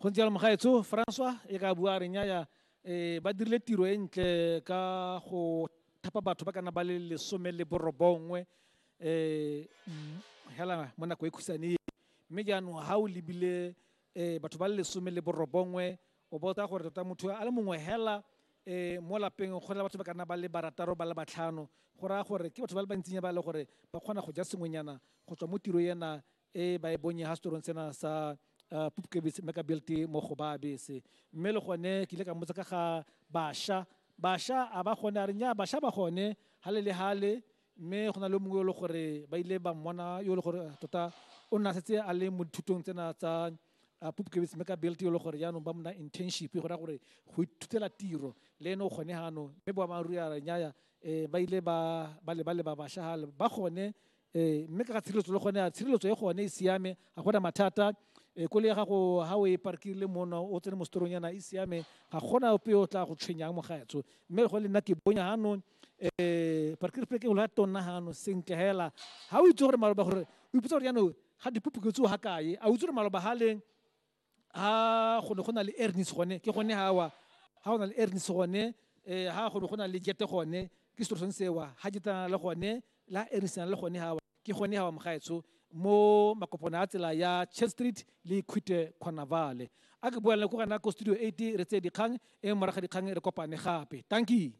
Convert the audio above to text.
go ntse jalo mogaetsho francois e ka bua re nyaya um ba dirile tiro e ntle ka go thapa batho ba kana ba le lesome le borobongwe um hela mo nako e khusane e mme jaanong ga o lebile um batho ba le lesome le borobongwe o botsa gore tota motho a le mongwe hela um mo lapeng go na le batho ba kana ba le barataro ba le batlhano go raya gore ke batho ba le bantsinya ba e le gore ba kgona go ja sengwenyana go tswa mo tiro ena e ba e bonye ha setorong sena sa uh, pupkebese mme ka belte mo go ba bese mme le gone ke ile ka mmotsa ka ga basha basha a ba gone a re nya basha ba gone hale le hale mme go na le mongwe yo le gore ba ile ba mmona yo le gore eh, tota o nna setse a le mo dithutong tsena tsa uh, pupkebese mme ka belte yo le gore jaanong ba mona internship go raya gore go ithutela tiro le ene o kgone ganong mme boammaaruri a re nyaya um ba ile ba leba leba basha gale ba gone ee mme ka ga tshireletso le gone a tshireletso e gone e siame ga gona mathata um kole ya gago ga o e parkile mono o tsene mo setorong yana e siame ga gona ope o tla go tshwenyang mogaetsho mme go le nna ke bonya ganong um parkire pleke o la tonna ganong sentle fela ga o itse gore maloba gore o ipotsa gore yanong ga dipupuke tseo ga kae a o itse gore maloba ga leng ha go ne go na le ernis gone ke gone ha wa ha go na le ernis gone eh ha go ne go na le jete gone ke setoro sone sewa ha jete na le gone la ernis na le gone ha wa ke gone ha wa mogaetsho mo makopona a tsela ya church street le khute khonavale a ke boela ko gana ko studio 8 re tse dikgang e moraga dikgang re kopane gape thank you